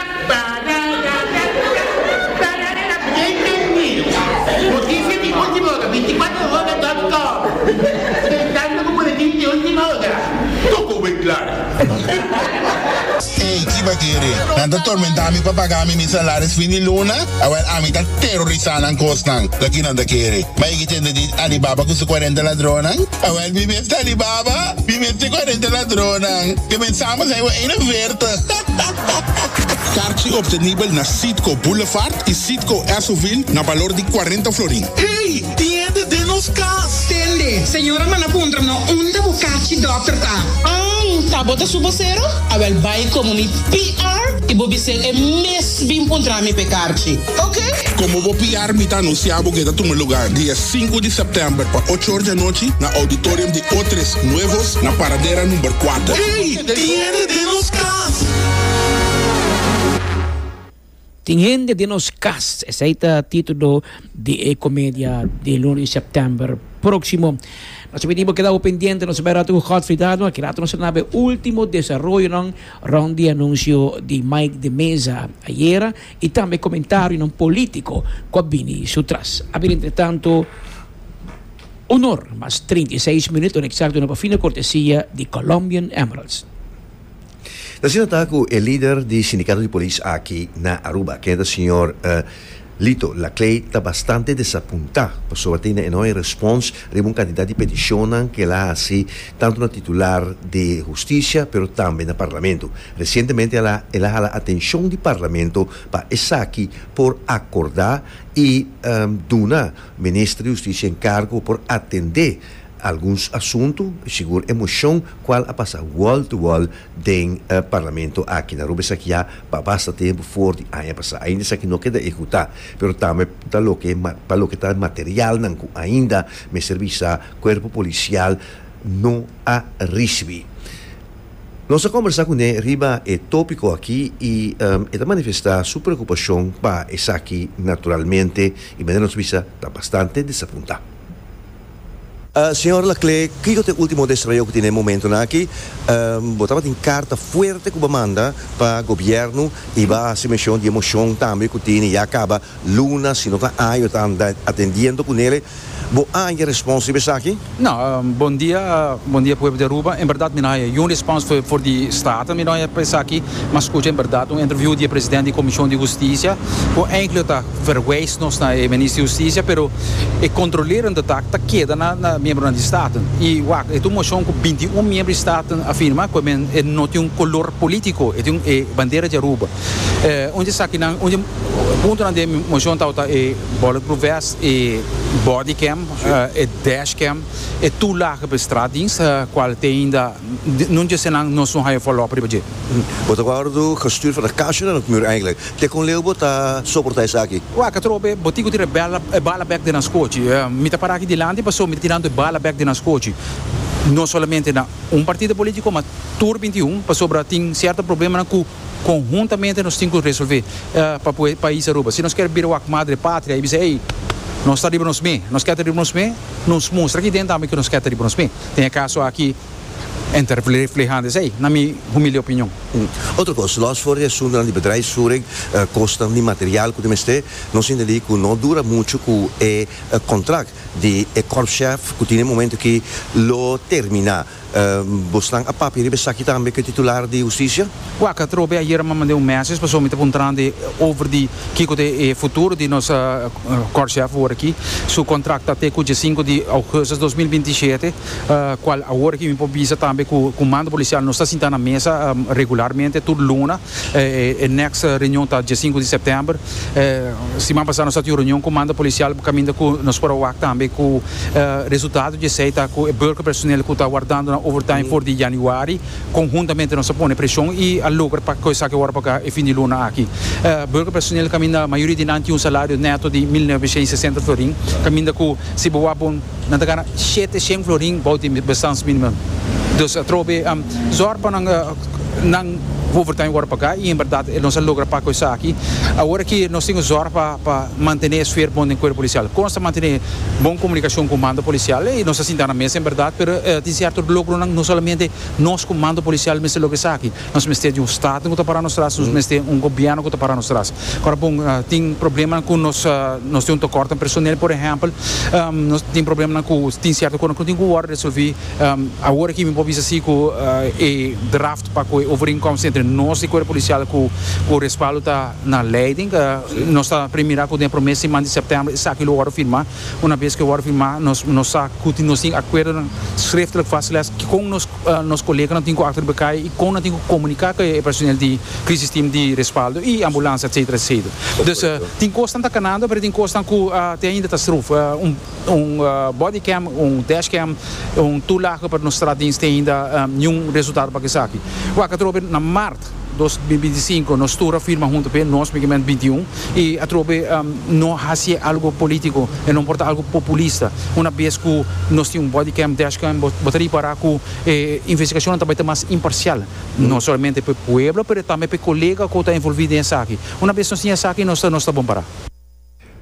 Para para el a bien dormir noticia di ultima hora binticuatro hora dot com pensando cu boletin di ultima hora toko wey clara. Ey kiba kere nan ta tormenta mi pa paga mi mi salaris fin di luna awel ami ta terorisa nan kosnan loke nan ta kere ma e ki tende di Alibaba cu su cuarenta ladronnan awel mi mes ta Alibaba mi mes ta e cuarenta ladronnan comenzamos hei bo ene verte. Karchi optenibel na Citgo Boulevard y Citgo Esso-ville na balor di cuarenta florin. Hey! Tiende den nos cas! Tende! Señora manda puntra no unda bo karchi dokter ta. Ang! Ta bo ta su bosero? Awel bai komo mi PR y bo bis'é e mes bin puntra mi p'e karchi. Oke! Komo bo PR mi ta anuncia bo ku e ta tuma lugar di e sinku di september pa ocho or di anochi na auditorium di Otres Nuevos na Paradera number kuater. Hey! Tin hende den nos kas. Esei ta titulo di e komedia di lunes Sèptèmber próksimo. Nos a pidi bo keda bo pendiente, nos a bai rato ku Godfrey Dadua. Ki rato nos a na e último desaroyonan rònt di anunsio di Mike de Meza ayera i tambe komentarionan polítiko ku a bini sutras. Abir entretanto. Un or mas trinta i seis minuut ora eksakto no por fina kortesia di Colombian Emeralds. Ta asina ta ku e lider di sindikato di polis aki na Aruba, ke ta señor Lito Laclay ta bastante desapunta pasobra tin e no hay respons riba un kantidat di petishonnan ke el a hasi tantu na titular di hustisia pero tambe na parlamento. Resientemente ala el a hala atenshon di parlamento pa esaki por akordá i duna Minister di Husticia encargo por atende alguns asunto y sigur e mocion cual a pasa wall to wall den Parlamento aki. Nan Aruba esaki ya pa basta tempo for di aña pasa. Ainda esaki no keda ehecuta pero tambe ta loke pa loke ta materialnan cu ainda mester bisa Cuerpo Policial no a ricibi. Nos a kombersá kuné riba e tópiko akí i e ta manifestá su preokupashon pa esaki naturalmente i manera nos bisa ta bastante desapuntá. Señor Laclé, kiko ta e último destreo ku tin den momentunan akí? Bo tabatin karta fuerte ku bo manda pa gobièrnu i bo a hasi menshon di e moshon tambe ku tin ya kaba Luna, Si no ta año ta atendiendo cu Nele, bo a haya respons riba esaki? No, Bon dia, bon dia pueblo di Aruba. En berdad mi no haya yun respons for di Staten, mi no haya pa esaki. Mi a scucha en berdad un interview di e president di e Comision di Husticia, cu eindelijk lo ta verwijs nos na e Minister di Husticia, pero e controlerende taak ta keda na na miembronan di Staten. Y wak, e ta un mocion cu binti un miembro di Staten a firma, cu e men e no tin un color politico, e tin e bandera di Aruba. Un di esakinan, un di puntonan den mi moshon tabata e bulletproof vest, e body cam, e dash cam, e toelage pa e straatdienst, cual te ainda no dje esnan nos no haya follow up riba dje. Bo ta wordo gestuur for na kasha na Nocmur eigenlijk. Te con leu bo ta soporta esaki? Wak a trobe e botico tira e bala bek den nan scochi. Mi ta para aki dilanti pasobra mi ta tirando e bala bek den nan scochi. No solamente na un partido politico, ma tur bintiun, pasobra tin cierto problemanan cu. Konhuntamente nos tin ku resolvé pa pui e pais Aruba. Si nos kier bira wak madre patria i bisa ei, nos ta riba nos mé, nos kier ta riba nos mé, nos mustra aki den tambe ku nos kier ta riba nos mé. Den e kaso aki en ta reflehando esei, na mi humilde opinion. Otro kos, lòs for di asuntunan di bedrijfsvoering, kosnan di material ku ta mester, nos intendí ku no dura muchu ku e kontrakt di e kòrpschèf ku tin e momentu aki lo terminá. Bosnan a papia riba esaki tambe ku e titular di hustisia? Wak a trobe ayer a manda un message pasobra mi ta puntrando over di kiko ta e futuro di nos kòrshèf ora aki. Su kontrakt ta te ku dje sinku di ougustus dos mil binti shete, kual awor aki mi por bisa tambe ku Kumando Polisial nos ta sinta na mesa regularmente tur luna. E next reunion ta dje sinku di september. Siman pasá nos a tin un reunion ku manda polisial pa kaminda ku nos por a wak tambe ku resultado di esei ta ku e burger personeel ku ta wardando nan overtime for di yanüari konhuntamente nos a pone preshon i a logra pa kos esaki wòrdu pagá e fin di luna aki. Burger personeel kaminda mayoria di nan tin un salario neto di mil noveshen i sesenta florin kaminda ku si bo wak bon nan ta gana shete shen florin bou di bestans minimum. Dus atrobe zòrg pa nan. nan overtime wòrdu pagá i en bèrdat nos a logra paka esaki. Awor aki nos tin ku zòrg pa pa mantené e sfer bon den kuerpo polisial. Kon nos ta mantené bon komunikashon ku mando polisial? Ei, nos a sinta na mesa en bèrdat, pero tin sierto logronan no solamente nos ku mando polisial mester logra esaki. Nos mester di un staten ku ta pará nos tras, nos mester di un gobièrnu ku ta pará nos tras. Ora bon, tin problemanan ku nos nos tin un tokòrtu den personel, por ehèmpel. Nos tin problemanan ku tin sierto kosnan ku no tin ku wòrdu resolví Awor aki mi por bisa si ku e draft pa koe overeenkomst entre nos di Cuerpo Policial ku respaldo ta na leiding. Nos ta pri mira ku den e prome siman di sèptèmber esaki lo wòrdu firmá. Una bes ku e wòrdu firmá nos sa ku tin nos tin akuerdonan sreftelik vastgelegd dikon nos koleganan tin ku akta di bekaya i kon nan tin ku komuniká ku e personel di Crisis Team di Respaldo i Ambulansia etsetera etsetera. Dus tin kosnan ta kanando pero tin kosnan ku te ainda ta sruf. Un body cam, un dash cam, un tur lago pero nos tra dins tin ainda niun resultado pa esaki. Wak atrobe na mart dos mil binti sinku nos tur a firma huntu p'e nos migement binti i un i atrobe no hasi e algo politico e no por ta algo populista una bes cu nos tin un body cam, dash cam bo ta ripara cu e investigacionnan ta bai ta mas imparcial no solamente p'e pueblo pero tambe p'e colega cu ta envolvi den esaki. Una bes nos tin esaki nos ta bon para.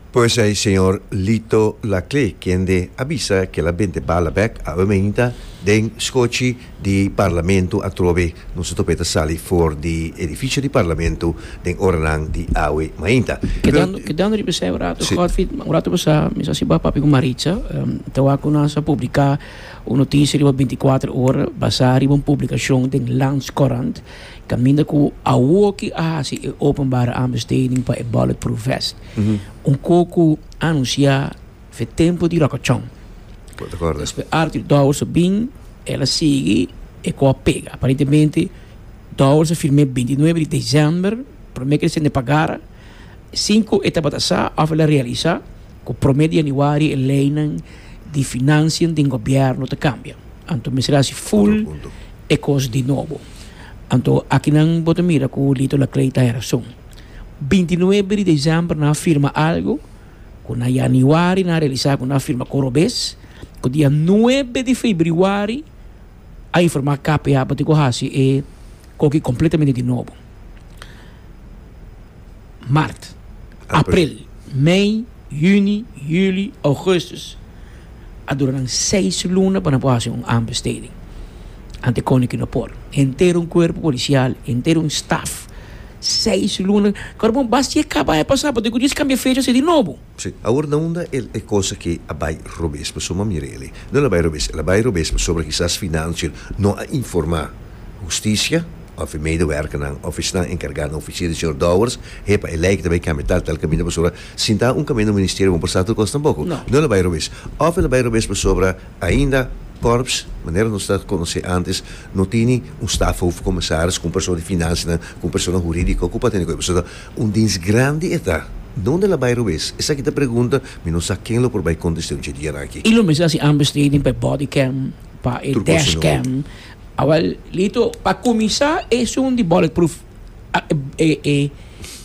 Pues ei señor Lito Laclé kende a bisa kel abente bala bèk awe mainta den skochi di Parlamento atrobe nos a topeta sali for di edificio di Parlamento den oranan di awe mainta. Kedando kedando riba esei un rato Si. Godfrid, un rato pasá mi sa si bo a papia ku Maritza, ta wak ku nos a publiká un notisie riba binticuater ora basá riba un publikashon den Landscourant. Caminda cu awoki a haci e openbare aanbesteding pa e Bulletproof Vest, un coco anuncia fe tempo di rocochon. Despues Arthur Dowers a bin, el a sigui, e co a pega. Aparentemente Dowers a firme bintinuebe di december, prome ker sende pa gara, sin cu e tabata sa of el a realisa cu prome di januari e leynan di financian den gobierno ta cambia. Anto mester haci full. e kos di nobo. Anto akinan bo ta mira ku Lito Laclay ta herason. Binti nuebe di desèmber nan a firma algu ku na yanüari nan a realisá ku nan a firma kor robes, ku dia nuebe di febrüari a informá KPA pa tin ku hasi e koki kompletamente di nobo. Mart, April, Mei, Juni, Juli, Augustus. A dura nan seis luna pa nan por hasi un aanbesteding. Ante koning ku no por. Henter un kuerpo polisial, henter un staf. Seis luna. Kor bon, bas si e kaba e pasá, bo tin ku djis kambia fecha, hasi di nobo. Sí, awor na unda el e cos aki a bay robes, pasobra mira el ey, no el a bay robes, el a bay robes pasobra kisas financia no a informa husticia of e medewerkernan of esnan encarga na oficia di señor Dowers, hepa e lijke ta bay cambia tal tal camino pasobra si ta un camino Ministerio bo por sa tur cos tampoco, no el a bay robes, of el a bay robes pasobra ainda Corps, manera nos ta conoce antes, no tini un staf hoofdcommissaris cu un persona di financianan cu un persona huridico cu pa tene cu ey, pasobra. Un dins grandi e ta. Dónde el a bai rowes? Esaki ta pregunta mi no sa ken lo por bai kontest'é un chedianan aki. I lo mester hasi understating pa e body cam, pa e dash cam. Awor, Lito, pa kuminsá esun di bullet proof e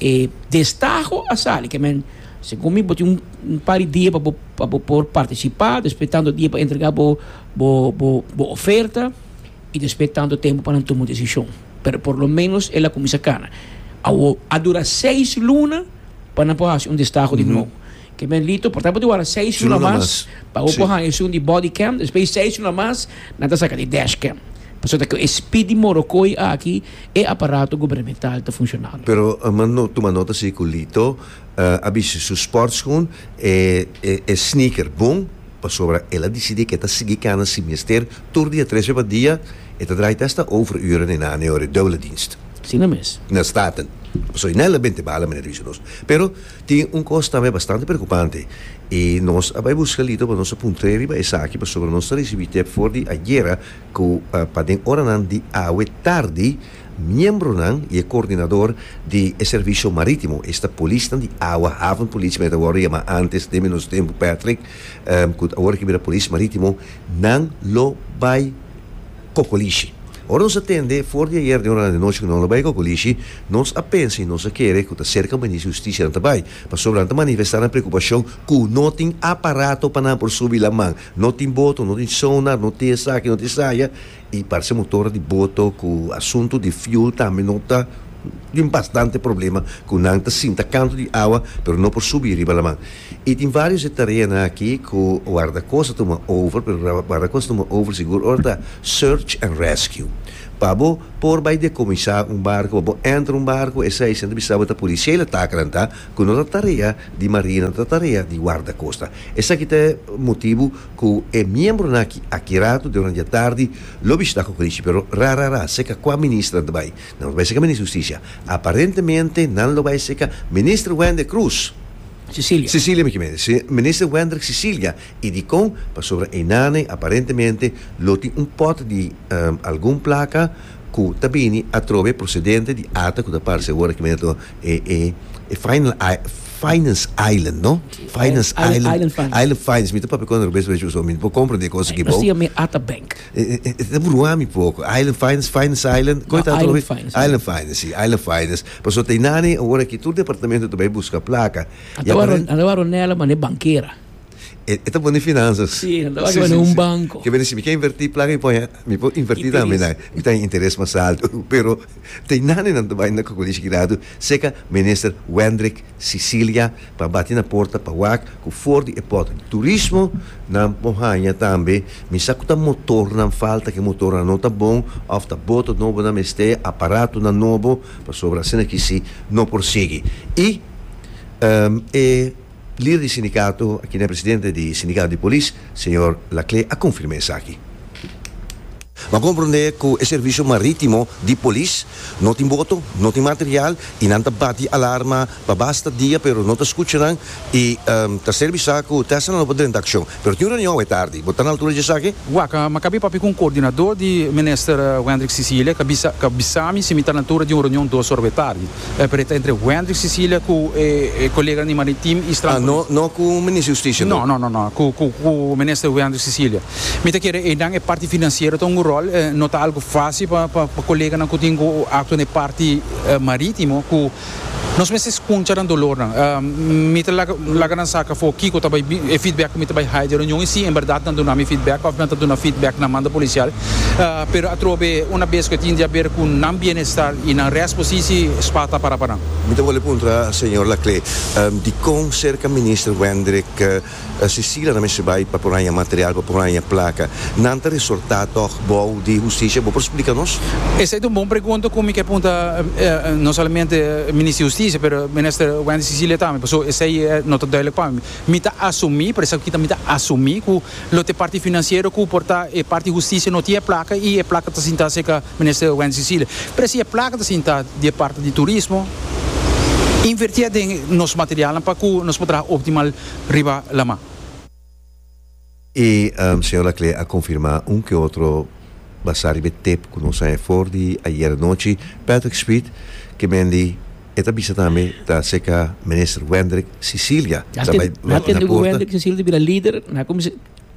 e destaho a sali. Ke men, segun mi bo tin un par di dia pa bo pa bo por partisipá, despues tantu dia pa entregá bo bo bo oferta. I despues tanto tempu pa nan tuma un decision. Pero por lo menos el a cuminsa cana. Awor, a dura seis luna pa nan por haci un destaho di nuovo. Ke men Lito, por tanto wara seis luna mas pa bo por haña esun di body cam, despues seis luna mas nan ta saca di dash cam. Pasobra cu e speed di Morrocoy aki e aparato gubernamental ta funcionando. Pero m'a tuma nota si cu Lito a bisti su sportschoen, e sneaker bon, pasobra el a dicidi cu e ta sigui cana si mester. tur dia trece pa dia e ta draai ta esta overuren e na neor e dubbele dienst. Asina mes. Na staten. Pasobra e na el a bente bala manera bisa nos. Pero tin un cos tambe bastante preocupante y nos a bai busca Lito pa nos a puntr'e riba esaki pasobra nos ta ricibi tep for di ayera cu pa den oranan di awe tardi miembronan y e coordinador di e servicio maritimo esta polisnan di awa havenpolis men e ta wordo yama antes den menos tempo Patrick cu awor a bira polis maritimo Nan lo bai kokolishi. Ora nos a tende for di ayer den orada di nochi ku nan lo bai kokolishi, nos a pensa i nos a kere ku ta serka Minister di Hustisia nan ta bai, pasobra nan ta manifestá nan preokupashon ku no tin aparato pa nan por subi laman, no tin boto, no tin sonar, no tin esaki, no tin esaya, I parse motor di boto ku asuntu di fuel tambe no ta tin bastante problema ku nan ta sinta kantu di awa pero no por subi riba laman. I tin varios e tareanan aki ku Wardaco sa tuma over pero Wardaco sa tuma over sigur ora ta search and rescue. Pa bo por bai dekomisá un barku pa bo entra un barku e seiscientos bisa bo ta policial atak nan ta ku no ta tarea di marina no ta tarea di wardacosta. Esaki ta e motibu. Ku e miembronan aki, aki ratu den ora di atardi, lo bishi ta kukurishi, pero ra ra ra, seka kua minister nan ta bai? Nan lo bai seka Minister di Hustisia. Aparentemente nan lo bai seka Minister Wender Cruz. Cecilia. Cecilia mi kier mende. Minister Wender Cecilia. I dikon? Pasobra einane aparentemente lo tin un pòt di algun plaka ku ta bini atrobe prosedente di ata ku ta parse awor aki mende. e, e, e final, i, finance island, no? Sí, Finance island- island. island finance. Island finance. Mi te papi kon rubes we chuso. Mi po compra de cosas que No bo. sia mi ata bank. Eh, eh, eh, te burua mi poco. Island finance, finance island. Koi No, ta island tolobe? finance, ja. Island finance, sí, island finance. Paso te nani, ora ki tur departamento te bai busca placa. Ata waro, ata waro Nela mane bankera. E e ta pone finanzas. Sí, e ta laga un banco. Ke bini si mi ke inverti plaka mi pone mi por inverti tambe na mi ta interes mas alto. Pero ta e naninan ta bai na Colegio Girado seca Minister Wendrick Cecilia pa bati na porta pa wak cu for di e pot di turismo nan por hanja tambe mi sa cu ta motornan falta ke motornan no ta bon of ta boto nobo nan mester aparatonan nobo pasobra asina aki si no por sigui y e Lider di sindikato, a kende presidente di sindikato di polis, señor Laclé, a konfirmá esaki. Bo a komprondé ku e servisio marítimo di polis no tin boto, no tin material i nan ta bati alarma pa basta dia pero no ta skucha nan i ta ser bisá ku tèsnan lo por drenta akshon. pero tin un reunion awe tardi. Bo ta na altura di esaki? Waka, ma kab'é papia ku un koordinadó di Minister Wendrick Cecilia ka bisa ka bisami si mi ta na altura di un reunion dos ora awe tardi. E pere ta entre Wendrick Cecilia ku e e koleganan di Maritim i Strand Police. Ah, no no ku Minister Justicia no? No, no, no, no. Ku ku ku Minister Wendrick Cecilia. Mi ta kere einan e parti finansiero ta un un ròl. No ta algu fásil pa pa koleganan ku tin ku aktua na e parti marítimo ku. Nos mester skuncha nan dolornan. Mi ta laga nan sa kafó kiko ta bai e feedback ku mi ta bai haya den reunion i si en bèrdat nan duna mi feedback òf nan ta duna feedback na manda polisial. Pero atrobe una bes ku e tin di haber ku nan bienestar i nan rèst posisi, spa ta pará pa nan. Mi ta wòl e puntra señor Laclé, dikon serka Minister Wendrik Cecilia ta mester bai pa por haña material, pa por haña placa. Nan ta resorta tog bou di Husticia? Bo por splica nos? Esey ta un bon pregunta cu mi ke punta no solamente Minister di Husticia pero Minister Wendy Cecilia tambe paso esey no ta duidelijk pa mi. Mi ta asumi, por esaki mi ta asumi cu lo te parti financiero cu por ta e parti Husticia no tin e placa y e placa ta sinta cerca Minister Wendy Cecilia, Presi e plaka ta sinta di e parti di turismo, invertié den nos materialnan pa ku nos por traha optimal riba laman. E señor Laclé a konfirmá un ke otro basá riba e tep ku nos a he for di ayer anochi, Patrick Smith, ke men di e ta bisa tambe ta aserka Minister Wendrick Cecilia, ta bai na porta. Wendrick Cecilia ta bira lider, na kuminsá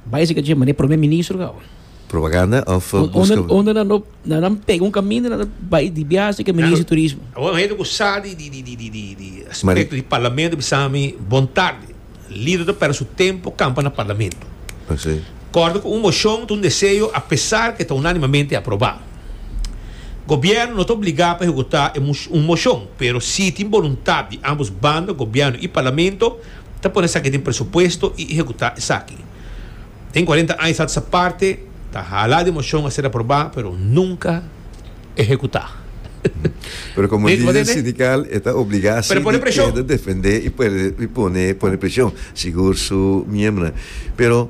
bai aserka dje manera Prome Ministro gau. Propaganda of buska. Unda nan no na nan pega un caminda nan ta bai di biaha ke minister di turismo. Awor un hende ku sa di di di di aspekto di parlamento bisa mi bon tarde lider ta perde su tempo kampa na parlamento kòrda ku un moshon ta un deseo a pesar ke ta unanimamente aproba gobièrnu no ta obligá pa ehekutá e un moshon pero si tin boluntat di ambos banda gobièrnu i parlamento ta pone esaki den presupuesto i ehekutá esaki Den cuarenta aña sa sa parte ta hala di mocion a ser aproba pero nunca ehecuta. Pero como lider sindical e ta obliga si di keda defende y pone pone presion sigur su miembronan. Pero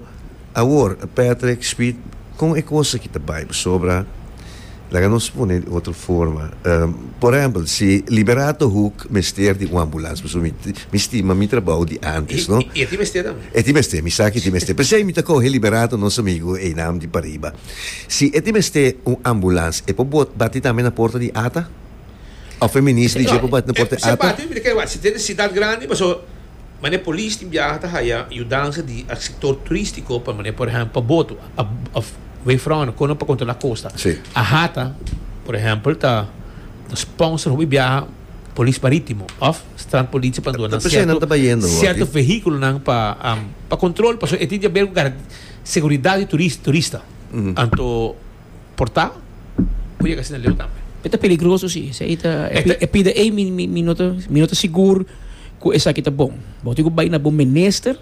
awor Patrick Speed con e cosa ki ta bay pasobra Laga nos pone di otro forma. Por ehempel, si Liberato Hoek mester di un ambulans, pasobra mi, mi stima mi trabou di antes, no? I e tin mester tambe? E tin mester, mi sa ku e tin mester. P'esei mi ta kohe Liberato, nos amigu einan di pariba. Si e tin mester un ambulans, e por bot, bati tambe na porta di ata? Òf e minis di dje por bati na porta di ata? No, e, se e parti mi ta kere wak. Si ta e necesidad grandi, pasobra Mane polis tin biaha ta haya yudansa di a sektor turistiko pa mane por ehempel pa boto of wefròna kono pa kontrolá kosta. A hata por ehempel ta ta sponsor hopi biaha polis marítimo of strandpolitie pa duna sierto sierto vehíkulonan pa pa kontrol pasobra e tin di haber ku garantía seguridat di turista. Anto. porta por yega asina leu tambe. E ta peligroso si, esei ta e pida ei mi mi no ta mi no ta sigur ku esaki ta bon. Bo tin ku bai na bo minister,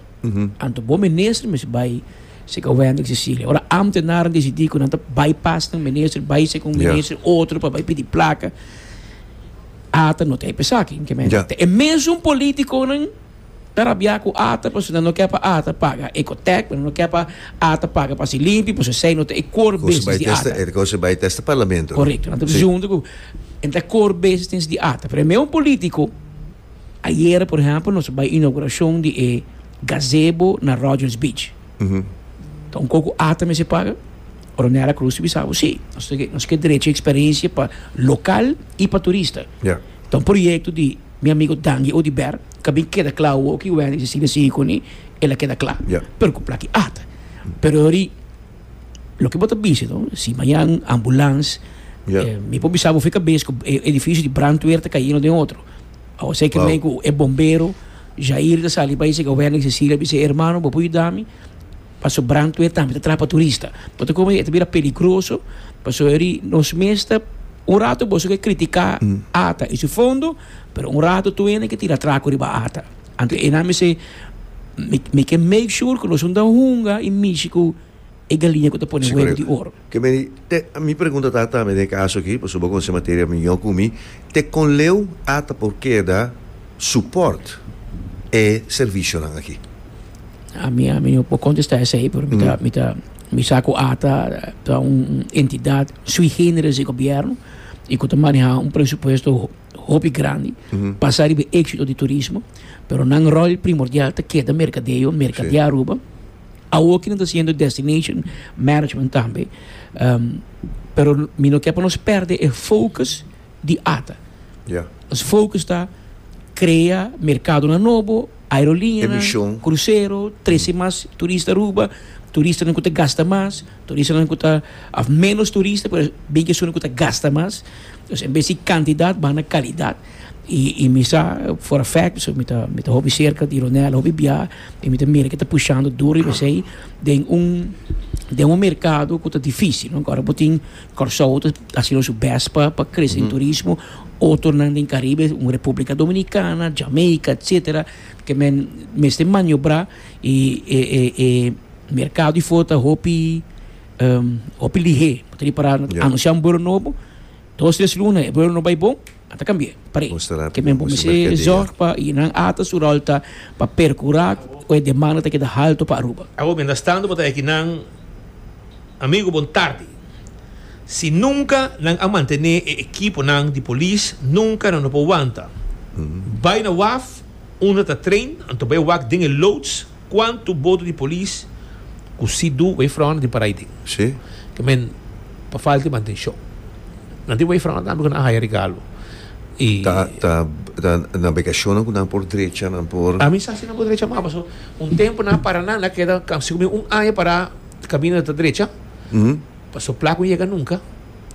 anto bo minister mester bai sek a Wendrick Cecilia. Ora ámtenaren desidí ku nan ta bai pas na minister, bai sek un minister otro pa bai pidi plaka, ata no ta e pa esaki. Te e mesun polítikonan. Ta rabia cu ata pasobra nan no ke pa ata paga e cotek, pero nan no ke pa ata paga pa si limpi pasobra esey no ta e core business di ata. E cosa bay ta esta parlamento. Correcto, nan ta bisa hunto cu e no ta e core business di ata. Pero ame un politico, ayere por ehempel nos a bay inauguracion di e gazebo na Rogers Beach. Ta un coco ata mester paga? Ordanera Cruz ta bisa bo si, nos ta nos ke derecho y experiencia pa local y pa turista. Ta un proyecto di mi amigo Dangi Odyberg ka bin keda cla awo ki Wendy si sigue sigui cu ni el a keda cla pero cu plaki ata pero ori loke bo ta bisti no si mayan ambulans mi por bisa bo fi cabes cu e edificio di brandweer ta cay eno den otro awo esey cree cu e bombero Jair ta sali bay siga Wendy si sigue a bisa hermano bo por yudami Paso brandweer tambe ta trapa turista. Bo ta komo di e ta bira peligroso pasobra di nos mes ta un rato boso ke kritiká ata i su fondo pero un rato tur hende ke tira atrako riba ata. Anto enan mi se mi mi ke make sure ku nos un ta hunga i mishi ku e galiña ku ta pone huevo di oro. Ke meri te, mi pregunta ta tambe den e kaso aki, pasobra bo konosé materia mihó ku mi, te kon leu a ta por keda supòrt e servisionan aki? A mi, a mi no por kontestá esei, pero mi ta, mi ta, mi sa ku a ta, ta un entidat sui generis di gobièrnu i ku ta manehá un presupuesto hopi grandi basá riba e éksito di turismo, pero nan ròl primordial ta keda merkadeo, merkadeá Aruba. Awoki nan ta siendo destination management tambe, pero mi no ke pa nos perde e focus di ata. Ya. Nos focus ta krea merkadonan nobo, aerolineanan. E mishon. Krusero, trese mas turista Aruba, turistanan ku ta gasta mas, turistanan ku ta, òf menos turista, pero bin ki esun ku ta gasta mas. Enbes di kantidat, baha na kalidat. I mi sa for a fact pasobra mi ta mi ta hopi serka di Ronel hopi bia i mi ta mira ke ta pushando duro riba esei den un den un merkado ku ta difisil no kòrda bo tin Kòrsou ta haciendo su best pa pa krese den turismo otonan den Karibe un Republica Dominicana Jamaica etsetera ke men mester maniobrá i e e e merkado di for ta hopi hopi lihé por ta ripará anunciá un buro nobo. Dos tres luna e pueblo no bay bon ata cambi'e par'e ke men por mester zorg pa y nan ata su rol ta pa percura cu e demanda ta keda halto pa Aruba. Awor mientras tanto bo ta eki nan amigo bon tardi si nunca nan a mantene e ekiponan di polis nunca nan no por wanta bay na waf unda ta train anto bay wak den e loods. Cuanto boto di polis cu si do wavefront di Parai tin? Sí. Ke men pa falta di mantencion. Nan tin wavefront tambe cu nan a haya regalo. Y. Ta ta ta navegacionnan cu nan por drecha, nan por. A mi sa si nan por drecha ama paso un tempo nan a para nan a keda casi como un aña para cabina ta drecha. Paso pla cu yega nunca.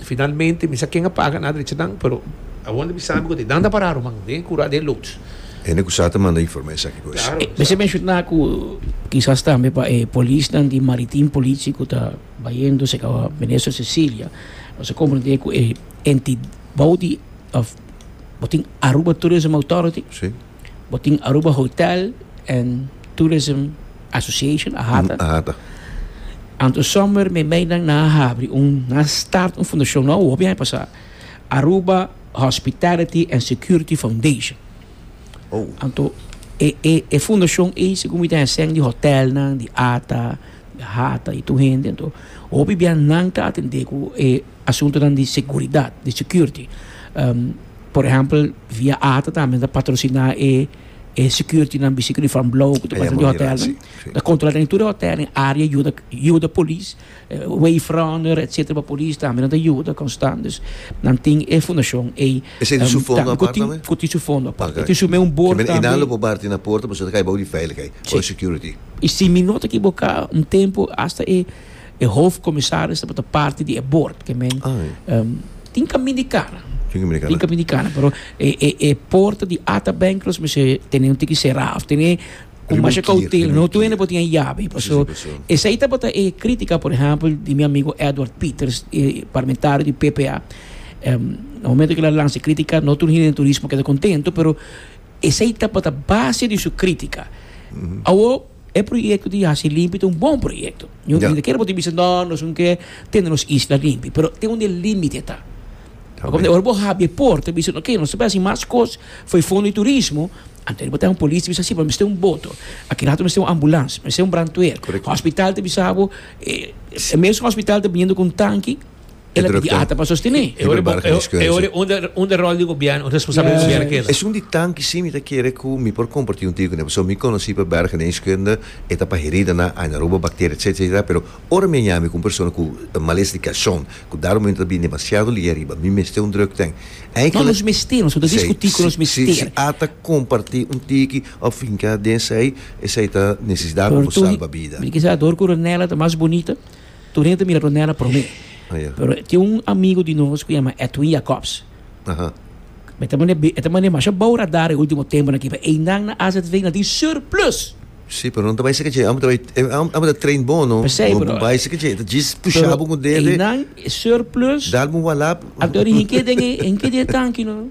Finalmente mi sa ken a paga na drechanan pero awor mi sabi cu ta e danda para Roman den e cura den e loads. Hende cu sa ta manda informa esaki cu es. Mester menciona cu kisas tambe pa e polisnan di Maritim Politie cu ta bayendo cerca Minister Cecilia nos a comprende cu e entidad bou di bo tin Aruba Tourism Authority. Bo tin Aruba Hotel and Tourism Association, AHATA. AHATA. Anto summer mi meinan nan a habri un, nan a start un fundacion nou, hopi aña pasá. Aruba Hospitality and Security Foundation. Oh. Anto e e e fundacion ei segun mi ten hesén di hotelnan, di ata, di ahata i tur hende. Anto hopi bia nan ta atendé ku e asuntonan di seguridad, di security. Um, Por ehempel, Via Ata tambe ta patrociná e e securitynan bisti ku di Van Blou ku ta basa den hotelnan. Ta kontrolá den tur e hotelnan, e área yuda yuda polis, wayfronder etcetera pa polis tambe nan ta yuda konstant. Dus nan tin e fundashon ei ku tin su fondo apart. E tin su mes un bord tambe. Kimin einan lo proba parti na porta pasobra ta kai bou di veilighei o security. I si mi no ta ekiboká un tempu asta e. E hofkomisaris tabata parti di e bord, ke men tin kamin di kara. Tin kamin di kara. Tin kamin di kara, pero e, e, e porta di Ata Bank los mester tene un tiki será, of tene con masha cautela, no tu ene por tin llave, paso esei tabata e crítica, por ejemplo, di mi amigo Edward Peters, e parlamentario di PPA, um, na momento que la lanza crítica, no tu hine turismo queda contento, pero esei tabata base di su crítica. Awo, E proyekto di hasi limpi ta un bon proyekto. Ñu Ya. kier bo tin bisa no nos un ke tene nos isla limpi, pero tin un e límite ta. Ta Pasobra bin. ora bo habia e porta bisa no oke nos ta basi mas kos for e fondo di turismo, anto ariba ta un polis ta bisa si pero mi mester un boto, aki rato mi mester un ambulans, mi mester un brandweer. Correcto. Hospital ta bisa bo e e mes hospital ta biniendo con tanki, El a pidi ata pa sostené. E ora bo, e ora e unda, unda rol di gobierno, responsabilidad di gobierno keda. Esun di tanki si mi ta kere ku mi por komparti un tiki kuné, pasobra mi konosí pa Berg geneeskunde, e ta pa heridanan, aina robo, bakteria, etcétera, etcétera, pero ora mi a yami ku un persona ku malesa di kashon, ku dado momento ta bini demasiado lier riba, mi mester un drugtèng. Eindelijk. No, nos mester, nos no ta diskutí ku nos mester. Si, si, si ata kompartí un tiki òf finká den esei, esei ta nesesidat pa bo salba bida. Por kisas dor ku Ronella ta mas bunita. Tur hende ta mira Ronella promé. Oh, yeah. Pero tin un amigo di nos ku yama Edwin Jacobs. Aha. E ta mane, e ta mane masha bou radar e ultimo temponan ki, pero einan na AZV na tin surplus. Sí, pero no ta bai sekeche. Amo ta bai, eh, am- amo ta train bon, no? P'esei, Bo- pero- Bai sekeche, ta jis pusha Pero bo ku dede, einan surplus, dal bo walap. anto ri hinke den e hinke den e tanki no.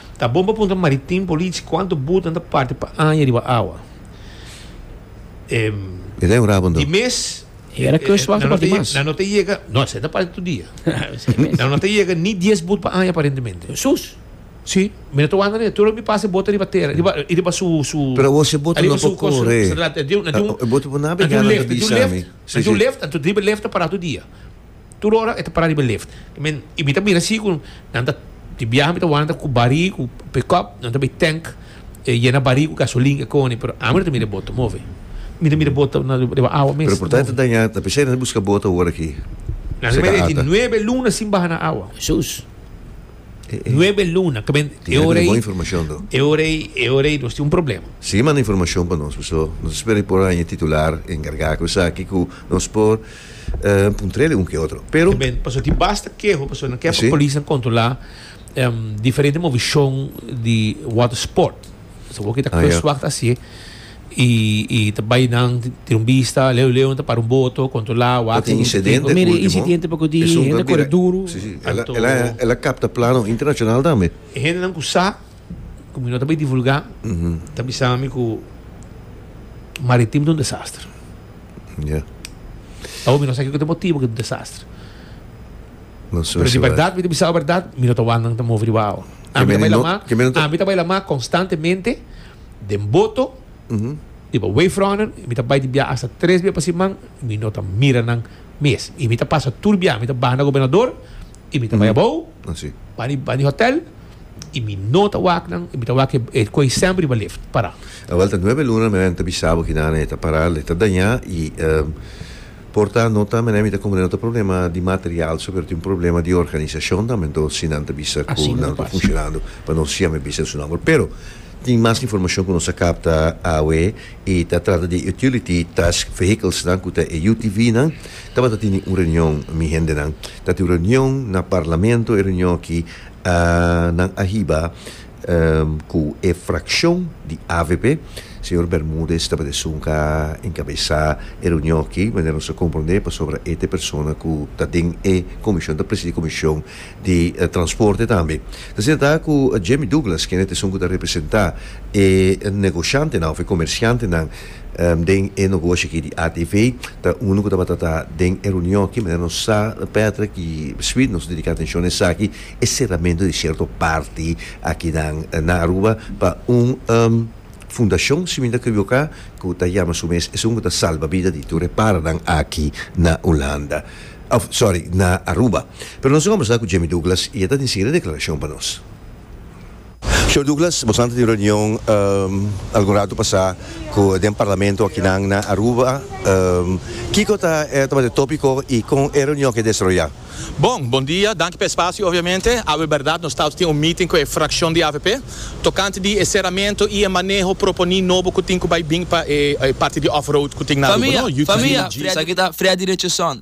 Ta bon pa puntra maritim polici cuanto boot nan ta parti pa aña riba awa. Di mes nan no ta yega, no esei ta parti tur dia, nan no ta yega ni dies boot pa aña aparentemente. Si, mi no ta wanda ne, tur loke mi pasa e bota riba tera, riba su, su, riba su cos, nan tin un lift, nan tin un lift, nan tin un lift ta para tur dia. Tur ora e ta para riba lift. Men y mi ta mira si cu nan ta di biaha mi ta wanta cu bari cu pick up nan ta bay tank e yena bari cu gasolin e cone pero ami no ta mira e boto move mi ta mira boto na riba awa mes. Pero por ta e ta daña ta pensai nan ta busca boto awor aki Nan ta mira tin nuebe luna sin baha na awa. Jesús. Nuebe luna ta mira tin e ora ey e ora ey e ora ey nos tin un problema. Sigui manda informacion pa nos paso nos ta spera y por haña e titular encarga cu esaki cu nos por. Puntrele un ke otro, pero. Tambe pasobra tin basta keho, pasobra nan ke pa polisnan kontrolá diferente movishon di watersport. Pasobra wak kita kustwak ta hasié i ta bai nan tin un bista leu leu nan ta para un boto kontrolá wak tin insidente último. Mira e insidente poko di hende a kore duru. Ela kapta plano internashonal tambe. E hendenan ku sa. ku mi no ta bai divulgá, ta bisa mi ku Maritim ta un desastre. Ya. Awo mi no sa kiko ta e motibu ku e ta un desastre. No su Pero di su bèrdat, mi ta bisa'u bèrdat, mi no ta wak nan ta move riba awa. Ke Ami ta mene bai no- lama, ke mene no ta- ami ta bai lama konstantemente den boto, riba Wavefront, mi ta bai di biaha asta tres bia pa siman, mi no ta mira nan mes. I mi ta pasa tur biaha, mi ta baha na Gobernador, y mi ta bai abao pa di hotel y mi no ta wak nan y mi ta wak e coy semper riba lift para. A welta nuebe luna menen ta bisa bo kina nan e ta para le ta daña y por ta no ta menen mi ta comprende no ta problema di material so pero tin un problema di organisacion tambe enton si nan ta bisa cu nan ta funcionando pa nos siempre a bisa su nomber pero tin mas informacion cu nos a capta awe y ta trata di utility task vehicles nan cu ta e UTV nan tabata tini un reunion mi hendenan Ta tin reunion na Parlamento e reunion aki a nan a hiba cu e fraccion di avp. Señor Bermudez tabata esun ca encabesa e reunion aki, manera nos a comprende pasobra e ta e persona cu ta den e comision, ta presidi comision di transporte tambe. Ta ser ta cu Jamie Douglas kende ta esun cu ta representa e negociantenan of e comerciantenan. Den e nogoshi aki di ATV ta uno cu tabata ta den e reunion aki, manera nos sa Patrick y Sweet nos dedica atencion na esaki, e cerramento di cierto parti akinan na Aruba pa un fundacion si mi ta equiboca cu ta yama su mes esun cu ta salba bida di tur e paranan aki na Hulanda of sorry na Aruba. Pero nos a conversa cu Jimmy Douglas y e ta tin e siguiente declaracion pa nos. Señor Douglas, boso a tin reunion algun ratu pasá cu den Parlamento akinan na Aruba. Kico ta e tabata e tópico y con e reunion ke desaroyá? Bon, bon dia. Danki pa e spasio obviamente. Awe berdad nos ta tin un meeting cu e fraccion di avp tocante di e ceramento y e maneho proponí nobo cu tin cu bay bin pa e parti di off-road cu tin na Aruba, no? UTVG. Esaki ta Freddy Richardson,